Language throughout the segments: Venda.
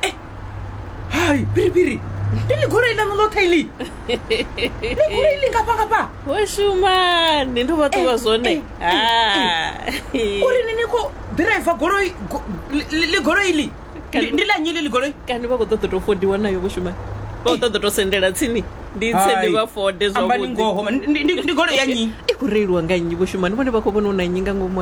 eh, hai piripiri ndi ligoloi lanu ḽoṱhe iḽi ligoloi iḽi ngafhangafha wo shumani ndi vha ṱuwa zwone uri ni ni khou ḓiraiva goloi ligoloi iḽi ndi ḽa nnyi ḽi ligoloi kani vha khou ṱoḓa tou fodiwa nayo vho shumani vha khou ṱoḓa tou sendela tsini ndi tse ndi vha fode zwavhuḓindi goloi ya nnyi i khou reiliwa nga nnyi vho shumani vhone vha khou vhona u na nnyi nga ngomu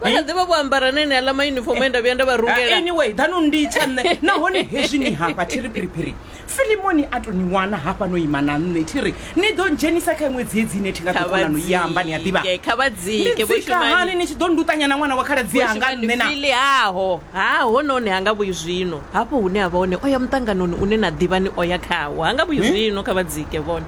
vha kha ḓivha vho ambara nene aḽa mayunifomo e nda vhuya nda vha rungela anyway dano nditsha nṋe nahone hezwi ni hafha thi ri phiriphiri filimoni a to ni wana hafha no ima na nṋe thi ri ni ḓo dzhenisa kha iṅwe dziedzi ine thi nga kha ḓikonano i amba ni a ḓivha vhadzike kha vhadzike vho nditsika hani shumani ni tshi ḓo nduṱanya na ṅwana wa khaladzi anga nṋe na fili haho ha hononi ha nga vhuyi zwino hafho hune a vha hone o ya muṱanganoni une na ḓivha ni o ya khawo ha nga vhuyi zwino kha vhadzike vhone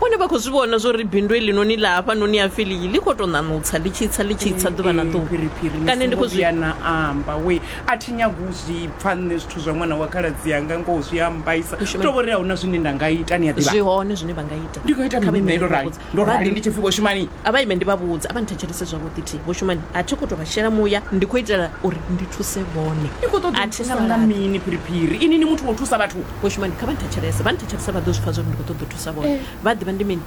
Vhone vha khou zwi vhona zwa uri bindu heḽinoni ḽa hafhanoni ha Filiyi ḽi khou tou ṋaṋutsa, ḽi tshi tsa, ḽi tshi tsa ḓuvha na Ee, ḓuvha. phiriphiri ni Kana ndi songo khou zwi. vhuya na amba we a thi nyagi u zwi pfa nṋe zwithu zwa ṅwana wa khaladzi anga ngoho zwi a mbaisa Mushumo- hu tou vho ri a hu na zwine nda nga ita ni a ḓivha Zwi hone zwine vha nga ita. ndi nga ita Kha vha mini ime nṋe ndi ndo vha rali vhudze. ndo Vha rali ḓi- ndi tshi pfi vho shumani A vha ime ndi vha vhudze, a vha nthetshelese zwavhuḓi thi. Vho Shumani, a thi khou tou vha shela muya, ndi khou itela uri ndi thuse vhone. ni khou ṱoḓa A u thi na thusa nga vhulaḓi. mini phiriphiri ini ni muthu wa u thusa vhathu Vho Shumani kha vha nthetshelese, vha nthetshelese vha ḓo zwi pfa zwa uri ndi khou ṱoḓa u thusa vhone, vha a ḓivha ndi mini.